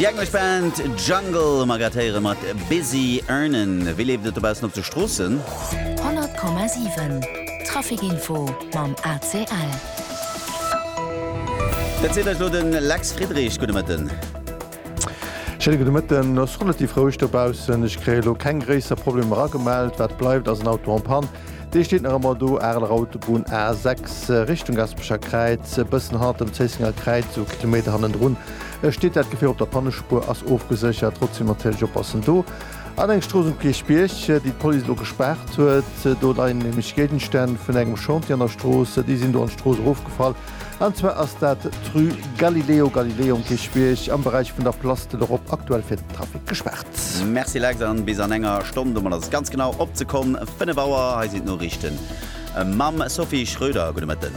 Déi englesch Band Jungle hu mer grad héiere mat Busy Earnin'. Wéi leeft et dobaussen op de Stroossen? 100,7 Trafic Info mam ACL. Dat seet eis elo de Lex Friedrich. Gudde Mëtten. Schéine gudde Mëtten. Ass relativ roueg dobaussen. Ech kréien elo keng gréisser Problemer agemellt. Wat bleift ass en Auto en panne. Dee steet nach ëmmer do, Areler Autobunn A 6 Richtung Gaspecher Kräiz, e bëssen hannert dem Zéissenger Kräiz, esou Kilometer hannendrun steet dat Gefier. Op der Pannespuer ass ofgeséchert, trotzdeem natierlech oppassen. Do an eng Strooss um Kierchbierg, déi d'Police elo gespaart huet. Do leien nämlech Géigenstänn vun engem Chantier an der Strooss, déi sinn do an d'Strooss erofgefall. An zwar ass dat d'Rue Galileo Galilei um Kierchbierg am Beräich vun der Place de l'Europe aktuell fir den Trafic gespaart. Merci Lex, an bis an enger Stonn, domat ass et ganz genau op d'Sekonn 5 Auer. Hei sinn d'Noriichten mam Sophie Schröder. Gudde Mëtten.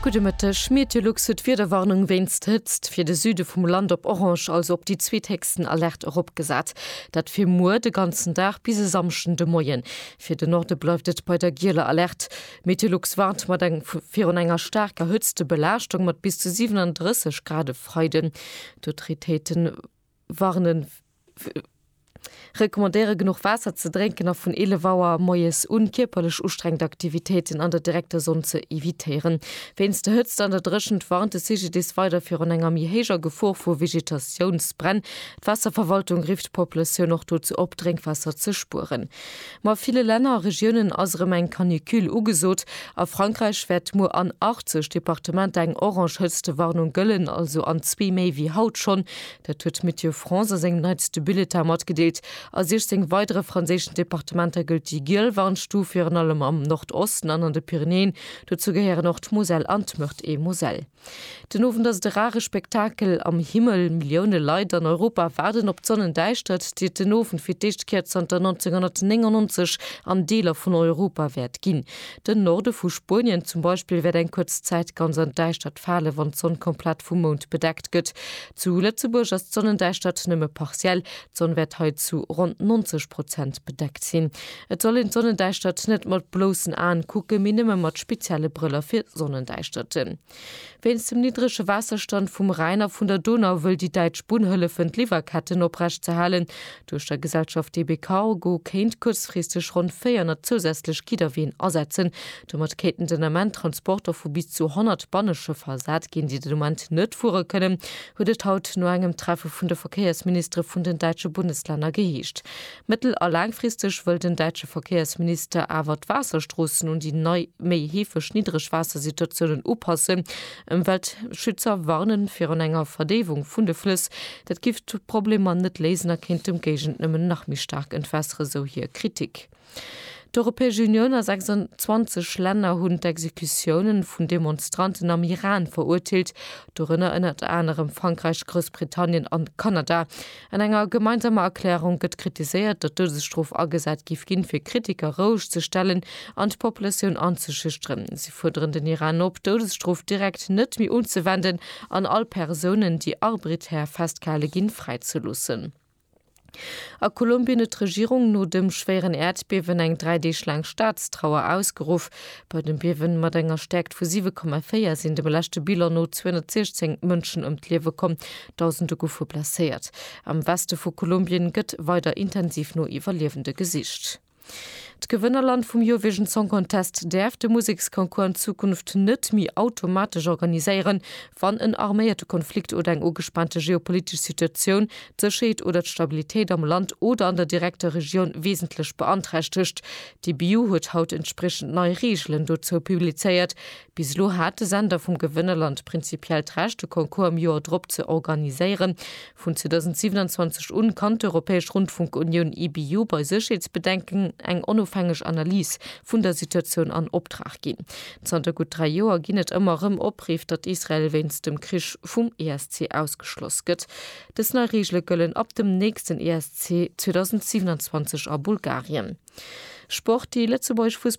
Gudde Mëtteg. Meteolux huet d'Wiederwarnung wéinst Hëtzt fir de Süde vum Land op orange, also op déi zweethéchsten Alerte eropgesat. Dat fir muer de ganzen Dag bis e Samschden de Moien. Fir de Norde bleift et bei der gieler Alerte. Meteolux warnt mat eng virun enger staarker Hëtztebelaaschtung mat bis zu 37 Grad e Freiden. D'Autoritéiten warnen recommandéiere genuch Waasser ze drénken a vun 11 Auer moies un kierperlech ustrengend Aktivitéiten an der direkter Sonn ze evitéieren. Wéinst der Hëtzt an der Dréchent warnt de CGDIS weider virun enger méi héijer Gefor vu Vegetatiounsbränn. D'Waasserverwaltung rifft d'Populatioun och dozou op, Drénkwaasser ze spueren. Ma ville Länner a Regiounen ass erëm eng Canicule ugesot. A Frankräich wäert muer an 80 Departementer eng orange Hëtztewarnung gëllen, also an zwee méi wéi haut schonn. Dat huet Météo France a sengem neitste Bulletin matgedeelt. A 16 weidere franséischen Departementer gëllt déi giel Warnstuf, virun allem am Nordosten an an de Pyrenäen. Dozou gehéieren och d'Moselle an d'Meurthe-et-Moselle. Den Owend ass et e rare Spektakel am Himmel. Millioune Leit an Europa waarden op d'Sonnendäischtert, déi et den Owend fir d'éischt Kéier zanter 1999 an Deeler vun Europa wäert ginn. Den Norde vu Spuenien zum Beispill wäert eng kuerz Zäit ganz an d'Däischtert falen, wann d'Sonn komplett vum Mound bedeckt gëtt. Zu Lëtzebuerg ass d'Sonnendäischtert nëmme partiell, D'Sonn wäert hei zu ronn 90 Prozent bedeckt sinn. Et soll een d'Sonnendäischtert net mat bloussen Aen kucken, mee nëmme mat spezielle Brëller fir Sonnendäischterten. Wéinst dem niddrege Waasserstand vum Rhäin a vun der Donau wëll déi däitsch Bunn hëllefen d'Liwwerketten oprecht ze halen. Duerch der Gesellschaft DB Cargo kéint kuerzfristeg ronn 400 zousätzlech Gidderween asetzen. Domat kéinten den Ament Transporter vu bis zu 100 Banneschëffer ersat ginn, déi den Ament net fuere kënnen, huet et haut no engem Treffe vun de Verkéiersministere vun den däitsche Bundeslänner geheescht. Mëttel a laangfristeg wëll den däitsche Verkéiersminister awer d'Waasserstroossen un déi nei, méi heefeg Niddregwaassersituatiounen upassen. Ëmweltschützer warne virun enger Verdéiwung vun de Flëss. Dat giff d'Problemer net léisen a kéint dem Géigend nëmmen nach méi staark entwässeren, sou hir Kritik. D'Europäesch Unioun a 26 Länner hunn d'Exekutiounen vun Demonstranten am Iran verurteelt, dorënner ënnert anerem Frankräich, Groussbritannien an Kanada. An enger gemeinsamer Erklärung gëtt kritiséiert, datt d'Doudesstrof agesat géif ginn, fir Kritiker roueg ze stellen an d'Populatioun anzeschüchteren. Si fuerderen den Iran op, d'Doudesstrof direkt net méi unzewenden an all Persounen, déi arbritaire festgehale ginn, fräizeloossen. A Kolumbien huet d'Regierung no dem schwéieren Äerdbiewen eng dräi Deeg laang Staatstrauer ausgeruff. Bei dem Biewe mat enger Stäerkt vu 7,4 sinn dem leschte Bilan no 216 Mënschen ëm d'Liewe komm, Dausende goufe blesséiert. Am Weste vu Kolumbien gëtt weider intensiv no Iwwerliewende gesicht. D'Gewënnerland vum Eurovision Song Contest däerf de Museksconcours an Zukunft net méi automatesch organiséieren, wann en arméierte Konflikt oder eng ugespaante geopolitesch Situatioun d'Sécherheet oder d'Stabilitéit am Land oder an der direkter Regioun wesentlech beanträchtegt. D'EBU huet haut entspriechend nei Reegelen dozou publizéiert. Bis elo hat de Sender vum Gewënnerland prinzipiell d'Recht, de Concours am Joer drop ze organiséieren. Vun 2027 un kann d'Europäesch Rundfunkunioun, EBU, bei Sécherheetsbedenken eng onofhängeg Analys vun der Situatioun an Optrag ginn. Zanter gutt dräi Joer ginn et ëmmer erëm Opriff, datt Israel wéinst dem Krich vum ESC ausgeschloss gëtt. Dës nei Reegele gëllen ab dem nächsten ESC 2027 a Bulgarien. Sport, Déi lëtzebuergesch Fussballnationalmannschaft